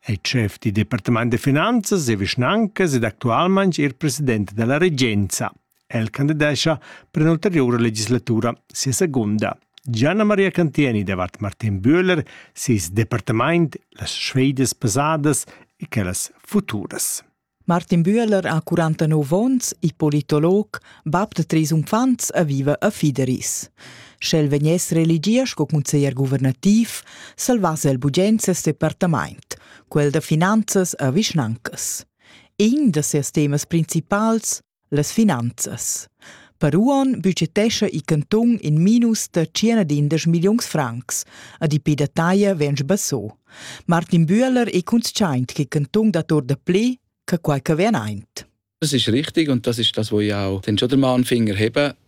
è chef dal departament da finanzas e vischnancas ed actualmain er president da la regenza. El candidescha per un'ulteriura legislatura, sia segunda. Gianna Maria Cantieni davart Martin Bühler, ses departament, las sfedas pasadas e quellas futuras. Martin Bühler ha 49 onns, il politolog, bab da treis uffants e viva a Fideris. Sch'el vegness religia sco consiglier guvernativ, salvasse el bugens ses departament, quel da finanzas e vischnancas. In da sias temas principals Las finanzas. Per uonn budgetescha il cantun in minus da circa d'indesch milliuns francs. A di pe da taglia vegn sbasso. Martin Bühler è consciaint che il cantun dat or da pli che quai che vien aint. Das ist richtig und das ist das, was ich auch den schon den Finger heben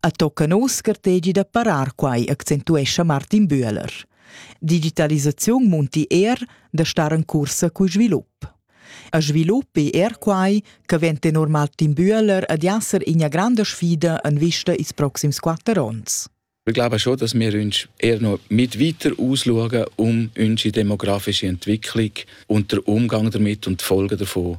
A tocca nos gartegi da parar quai, accentuescha Martin Bühler. Digitalisaziun munti er da star en cursa cul svilup. A svilup è er quai che vent tenor Martin Bühler ad esser ina grande sfida en vista ils proxims quatter onns. Ich glaube schon, dass wir uns eher noch mit weiter ausschauen um unsere demografische Entwicklung und den Umgang damit und die Folgen davon